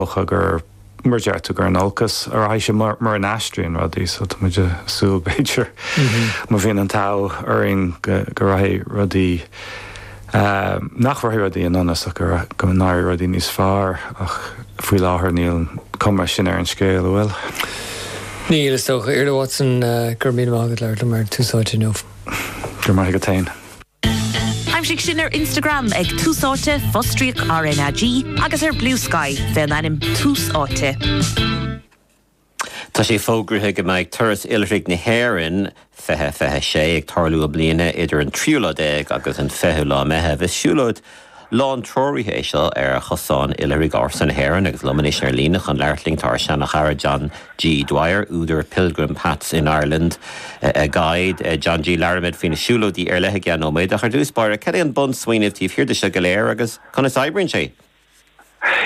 dócha gur mar a deir tú, gur in olcas a rachaidh sé mura n-aistríonn rudaí so tá muid ag súil, b'fhéidir, má bhíonn an t-ádh orainn, go rachaidh rudaí, nach rachaidh rudaí i ndonas ach go n-éirí rudaí níos fearr ach faoi láthair níl an cuma sin ar an scéal, an bhfuil? Níl, is dócha. Iarla Watson, go raibh míle maith agat as labhairt liom ar Tús Áite inniu. Go raibh maith agat féin. Aimsigh sinn ar Instagram ag Tús Áite, fostríoc RnaG, agus ar Bluesky, faoin ainm Tús Áite. Tá sé fógraithe go mbeidh Turas Oilithrigh na hÉireann 2026 ag tarlú i mbliana idir an tríú lá déag agus an fichiú lá Meitheamh. Is siúlóid lántreoraithe é seo ar chosáin oilithrigh ársa na hÉireann agus liom anois ar líne chun labhairt linn tá ár seanchara John G. Dwyer, údar Pilgrim Paths in Ireland, A Guide. John G., labhróimid faoi na siúlóidí ar leith i gceann nóiméad. Ach ar dtús báire, cad é an bunsmaoineamh taobh thiar de seo go léir agus conas oibríonn sé?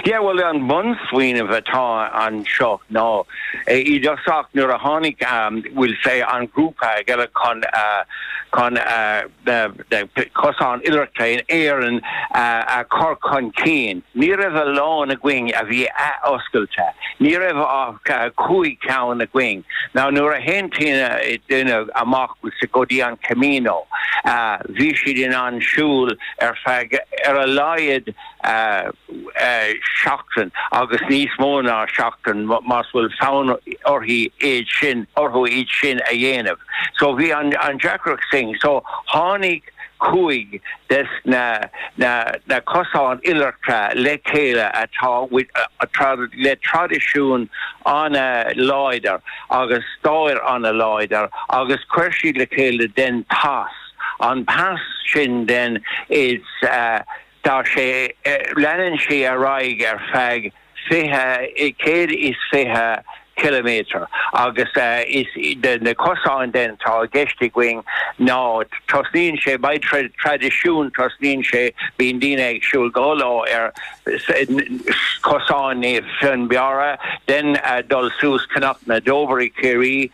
Yeah, bhuel, an bunsmaoineamh atá anseo ná, i dtosach nuair a tháinig, we'll say, an grúpa le chéile chun, chun cosáin oilithreachta in Éirinn a chur chun cinn, ní raibh a lán againn a bhí athoscailte, ní raibh ach cúig cheann againn. Now, nuair a théann daoine amach, we'll say, go dtí an Camino, bhí siad in ann siúl ar feadh ar a laghad, seachtain agus níos mó ná seachtain más bhfuil fonn orthu iad sin, orthu iad sin a dhéanamh. So bhí an an deacracht sin. So tháinig cúig des na na na cosáin oilithreachta le chéile atá le traidisiún an-láidir agus stair an-láidir agus chuir siad le chéile then pas, an pas sin then is. Tá sé, leanann sé ar aghaidh ar feadh fiche, céad is fiche ciliméadar agus is iad na cosáin then atá i gceist againn ná, tosnaíonn sé, beidh traidisiún, tosnaíonn sé, bíonn daoine ag siúl go leor ar Chosán Naomh Fionnbarra, then dul suas Cnoc na dTobar i gCiarraí.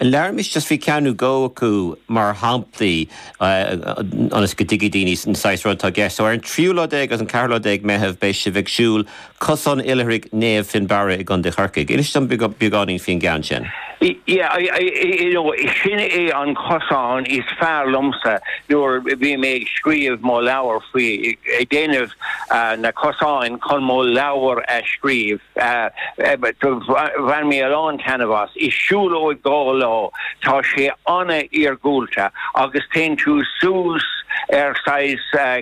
Labhraimis just faoi ceann nó dhó acu mar shamplaí ionas go dtuigfidh daoine an saghas rud atá i gceist. So ar an tríú lá déag agus an ceathrú lá déag Meitheamh beidh sibh ag siúl Cosán Oilithrigh Naomh Fionnbarra i gContae Chorcaí. Inis dom beagáinín faoin gceann sin. Yeah, you know, sin é an cosán is fearr liomsa nuair a bhí mé ag scríobh mo leabhair faoi, ag déanamh na cosáin chun mo leabhar a scríobh. Bhain mé a lán taitneamh as. Is siúlóid dhá lá é. Tá sé an-iargúlta agus téann tú suas ar saghas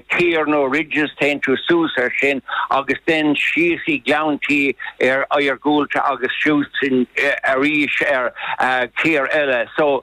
caor nó ridges, téann tú suas air sin agus then síos i gleanntaí an-iargúlta agus suas arís ar caor eile. So.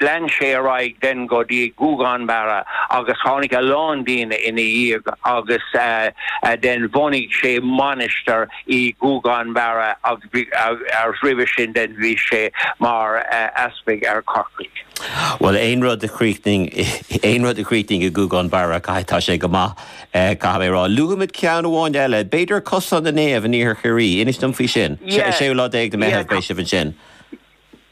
Lean sé ar aghaidh then go dtí Gougane Barra agus tháinig a lán daoine ina dhiaidh agus then bhunaigh sé mainistir i Gougane Barra agus roimhe sin then bhí sé mar easpag ar Chorcaigh. Bhuel, aon rud a chríochnaíonn, aon rud a chríochnaíonn i nGougane Barra, tá sé go maith, caithfidh mé a rá. Luafaimid ceann amháin eile, b'fhéidir Cosán na Naomh in iarthar Chiarraí. Inis dom faoi sin. 6ú lá déag de Mheitheamh, beidh sibh ansin.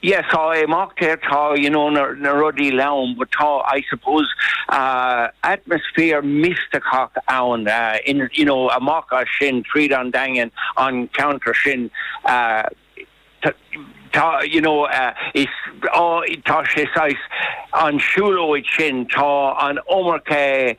Yes, tá imeachtaí, tá, you know, na, na rudaí eile ann, but tá, I suppose, ah, atmosphere misteachach ann, ah, in, you know, amach as sin, tríd an Daingean, an ceantar sin, ah, t, tá, you know, ah, is, oh, tá sé saghas, an siúlóid sin, tá an iomarca,